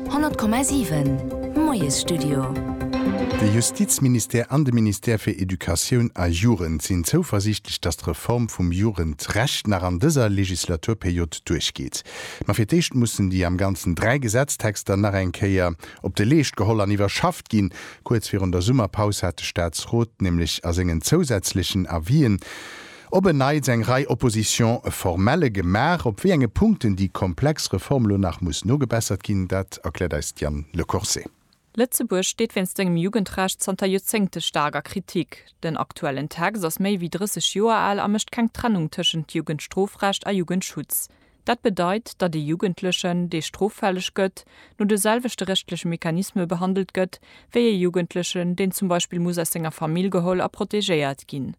100,7 Moiesstudio. De Justizministère an de Ministère fir Educatioun a Jugend sinn zouversiichtlech, datt d'Reform vum Jugendrecht nach an dëser Legislaturperiod duerchgeet. Ma fir d'éischt mussen déi am Ganzen dräi Gesetztexter nach eng Kéier op de Leescht geholl an iwwerschafft ginn. Kuerz virun der Summerpaus hat de Staatsrot nämlech a sengen zousätzlechen Avisen, Op en Neits eng Rei Oppositions formelle gemaach. Op wéi enge Punkten déi komplex Reform elo nach muss nogebessert ginn, dat erkläert eis d'Diane Le Corset. Lëtzebuerg steet wéinst sengem Jugendrecht zanter Joerzéngte staark a Kritik. Den aktuellen Text ass méi wéi 30 Joer al a mécht keng Trennung tëschent Jugendstrofrecht a Jugendschutz. Dat bedeit, datt ee Jugendlechen, dee stroffälleg gëtt, no de selwechte rechtleche Mechanisme behandelt gëtt, wéi ee Jugendlechen, deen zum Beispill muss aus senger Famill geholl a protegéiert ginn.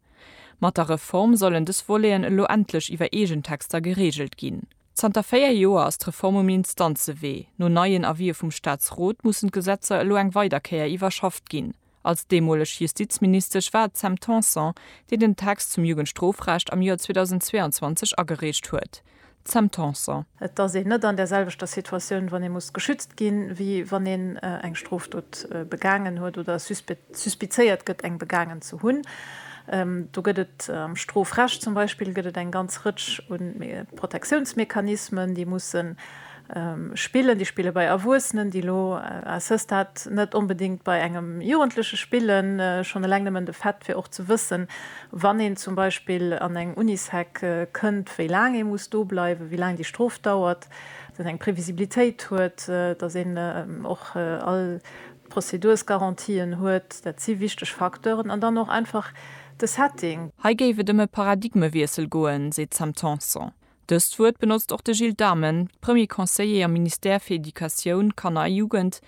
Mat der Reform sollen dës Voleten elo endlech iwwer eegen Texter gereegelt ginn. Zanter véier Joer ass d'Reform um Instanzewee. No neien Avisë vum Staatsrot mussen d'Gesetzer elo eng weider Kéier iwwerschafft ginn. Als deemoleg Justizministesch war et d'Sam Tanson, déi den Text zum Jugendstrofrecht am Joer 2022 agereecht huet. Sam Tanson. Et ass een net an där selwechter Situatioun, wann ee muss geschützt ginn, wéi wann een eng Strofdot begaangen huet oder suspizéiert gëtt, eng begaangen ze hunn. Do gëtt et am Strofrecht zum Beispill gëtt et eng ganz Rëtsch u Protectiounsmechanismen, déi mussen Spillen, déi spille bei Erwuessenen, déi elo à ce stade net onbedéngt bei engem Jugendleche spillen. Schonn eleng nëmmen de Fait, fir och ze wëssen, wann een zum Beispill an eng Unisec kënnt, wéi laang ee muss do bleiwen, wéi laang déi Strof dauert, datt een eng Previsibilitéit huet, datt een och all d'Prozedursgarantien huet, dat si wichteg Facteuren. An dann och einfach de Setting. Hei géif et ëm e Paradigmewiessel goen, seet d'Sam Tanson. Dëst Wuert benotzt och de Gilles Dhamen, Premier Conseiller am Ministère fir Educatioun, Kanner a Jugend,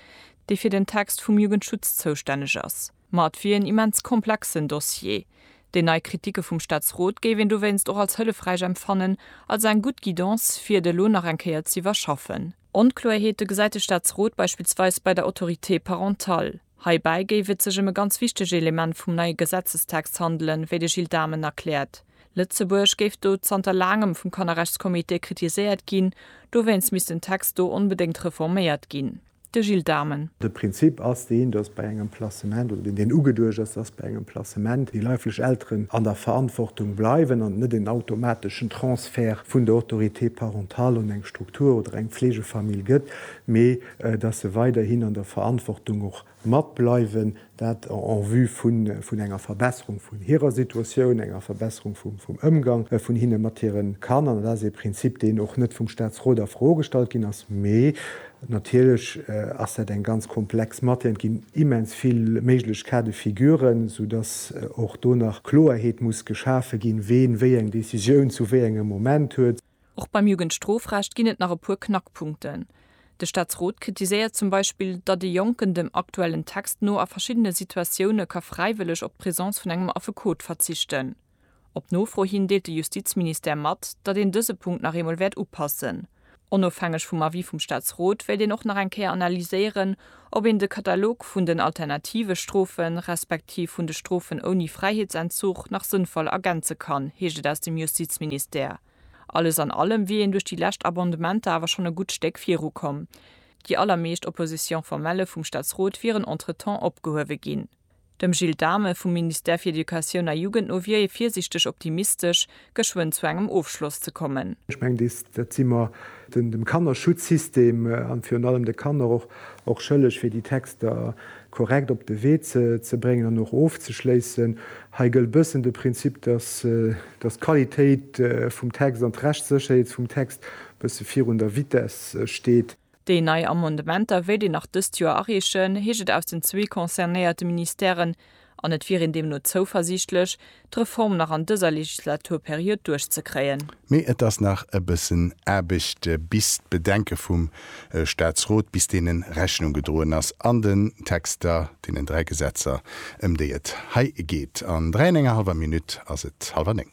dee fir den Text vum Jugendschutz zoustänneg ass. Ma et wier en immens komplexen Dossier. Déi nei Kritike vum Staatsrot géif een dowéinst och als hëllefräich empfannen, als eng gutt Guidance, fir et elo nach eng Kéier z'iwwerschaffen. Onkloerheete gesäit de Staatsrot beispillsweis bei der Autorité parentale. Heibäi géif et sech ëm e ganz wichtege Element vum neie Gesetzestext handelen, wéi de Gilles Dhamen erkläert. Lëtzebuerg géif do zanter laangem vum Kannerrechtscomité kritiséiert ginn, dowéinst misst den Text do onbedéngt reforméiert ginn. De Gilles Dhamen. De Prinzip ass deen, datt bei engem Placement, oder deen deen ugeduecht ass, datt bei engem Placement déi leiflech Elteren an der Verantwortung bleiwen an et net en automateschen Transfert vun der Autorité parentale un eng Struktur oder eng Pflegefamill gëtt, mee dass se weiderhin an der Verantwortung och matbleiwen, dat en vue vun enger Verbesserung vun hirer Situatioun, enger Verbesserung vum Ëmgang vun hinne mat hire Kanner. Dat ass ee Prinzip, deen och net vum Statsrot a Fro gestallt ginn ass, mee natierlech ass dat eng ganz komplex Matière. Et ginn immens vill méiglech Cas de figuren, soudass och do nach Kloerheet muss geschafe ginn, ween wéi eng Décisioun zu wéi engem Moment huet. Och beim Jugendstrofrecht ginn et nach e puer Knackpunkten. De Staatsrot kritiséiert zum Beispill, datt e Jonken dem aktuellen Text no a verschiddene Situatioune ka fräiwëlleg op d'Presence vun engem Affekot verzichten. Op Nofro hin deelt de Justizministère mat, datt een dëse Punkt nach eemol wäert upassen. Onofhängeg vum Avis vum Staatsrot wéilt een och nach eng Kéier analyséieren, Ob een de Katalog vun den alternative Strofen, respektiv vun de Strofen ouni Fräiheetsentzug nach sënnvoll ergänze kann, heescht et aus dem Justizministère. Alles an allem wier een duerch déi lescht Abondementer awer schonn e gutt Stéck viru komm. Déi allermeescht Opposition formelle vum Staatsrot wieren entretemps opgehuewe ginn. Dem Gilles Dhamen vum Ministère fir Educatioun a Jugend no wier ee virsiichteg optimistesch, geschwënn zu engem Ofschloss ze kommen. Ech mengen, dees, dat si mer dem Kannerschutzsystem an virun allem de Kanner och, och schëlleg, fir déi Texter korrekt op de Wee ze, ze bréngen an och ofzeschléissen. Hei gëllt e bëssen de Prinzip, dass, dass d'Qualitéit vum Text an d'Rechtssécherheet vum Text e bësse virun der Vitesse steet. Déi nei Amendementer wéilt een nach dëst Joer areechen, heescht et aus den zwee concernéierte Ministèren, an et wier een deemno zouversiichtlech, d'Reform nach an dëser Legislaturperiod duerchzekréien. Mee et ass nach e bëssen Aarbecht, bis d'Bedenke vum Staatsrot, bis deene Rechnung gedroen ass an den Texter, deenen dräi Gesetzer, ëm déi et hei geet. An dräi an enger hallwer Minutt ass et hallwer néng.